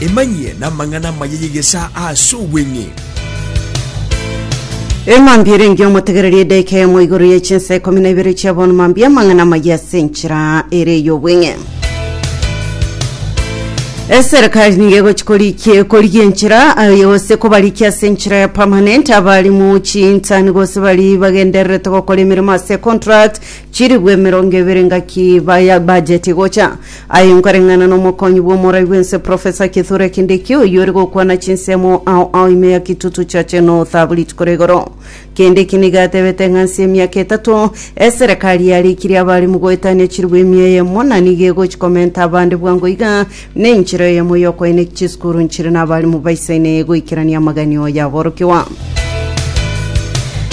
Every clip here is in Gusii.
Emanyie namang'ana amaya y'egesaa ase obweng'e. Emambia ere engiya omotegererie edaika eyemo igoro ye chinsa ikomi na ibere chia bono mambia amang'ana amaya ase enchera ere ey'obweng'e. Eserikali nigo egochi korikie korigia enchera aye gose kobarikia ase enchera ya permanent abari mu chinsani gose bari bagendererete gokora emeremo ase contract Chiribu emerongo ebere ngaki baya bajeti gocha. Aye nkoreng'ana nomokonyi bw'omorai bw'ense Professor Kithure Kindiki oyio ore gokwana chinsemo ao ao ime ya kitutu chache nothaburit kore igoro. Kindiki nigo atebete ng'a nse emiaka etato eserekari yareikirie abarimu goetania chiribu emia eyemo na nigo egochi komenta abande bwango iga Nenchera eyemo y'okoina chisukuru nchire n'abalimu baisaine goikerania amagenio y'aborokigwa.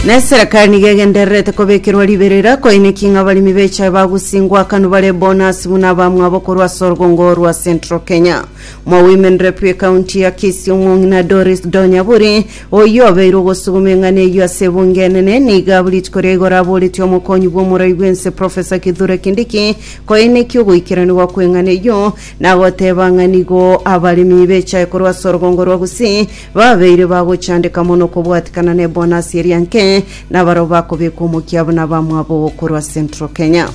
Na eserekari nigo egendererete kobekerwa riberera koineki ng'a abalimi b'echae bagusingwa akanwa bare bonasi buna abamwabo korwa ase orgongo rwa Central Kenya. Mwa Women Rep ekaunti ya Kisii omong'ina Doris Donyaburi oyio obeire ogosuguma eng'ana eyio ase ebunge enene nigo abwo rituko ria igoro aboretie omokonyi bw'omorai bw'ense Professor Kithure Kindiki Koine ki ogoikeranigwa kw'eng'ana eyio? Nagoteeba ng'a nigo abaremi b'echae korwa ase orogongo rwa Gusii babeire bagochandeka mono kobwatikana n'ebonasi eria nke, nabarabwo bakobekwa omokia buna abamwabo korwa Central Kenya.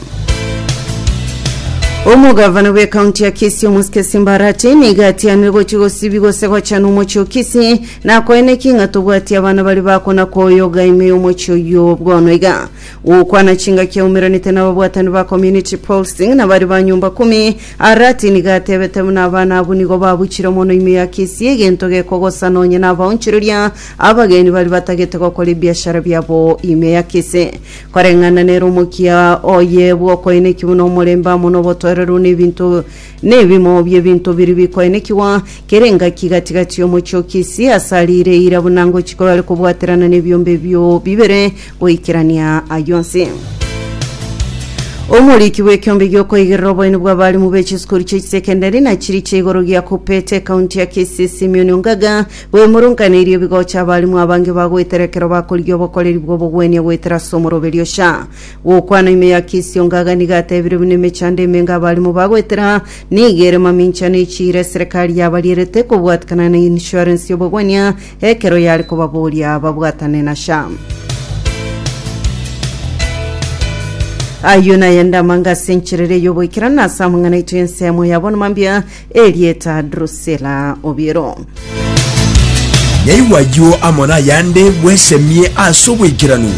Omogavana bwe kaunti ya Kisii Omusikesi Mbarati niga atianire gochi gosibi gose gochana omochi o Kisii na koine ki ng'a tobwati abana bari bakona koyoga ime y'omochi oyio bono iga Gokwana chingaki aumeranete nababwatani ba community policing na baria ba nyomba kumi, Arati nigo atebete buna abana abwo nigo babuchire mono ime ya Kisii egento gekogosa nonye nabaonchoreria abageni baria batagete gokora ebiashara biabo ime ya Kisii. Koreng'ana nere omokia oye bwokoeneki buna omorembe amo nobotoereru nebinto Nebimo bi'ebinto biria bikoenekigwa, kera engaki gati-gati y'omochie o Kisii ase aria ire eira buna ngochika oyore kobwaterana nebiombe ebio bibere goikerania ayio onsi. Omoriki bw'ekiombe gi'okoigerera oboeni bw'abarimu be chisukuru chie chisekendari na chiria chia igoro gia Kupete, ekaunti ya Kisii, Simeon Ongaga, bwemurunkaneirie ebigocha abarimu abange bagoetera ekero bakorigia obokoreri bw'obogwenia goetera ase omoroberio Sha. Gokwana ime ya Kisio Ngaga nigo atebire buna emechando emenge abarimo bagoetera nigo ere mamincha na echiira eserekari yabarierete kobwatikana na insurance y'obogwania ekero yare kobaboria babwatane na SHA. Ayio nayende amanga ase encherera y'oboikeranu na ase amang'ana aito y'ensemo ya bono mambia erieta Drusilla Obiero. Yaigwa ayio amo nayande bwesemie ase oboikeranu.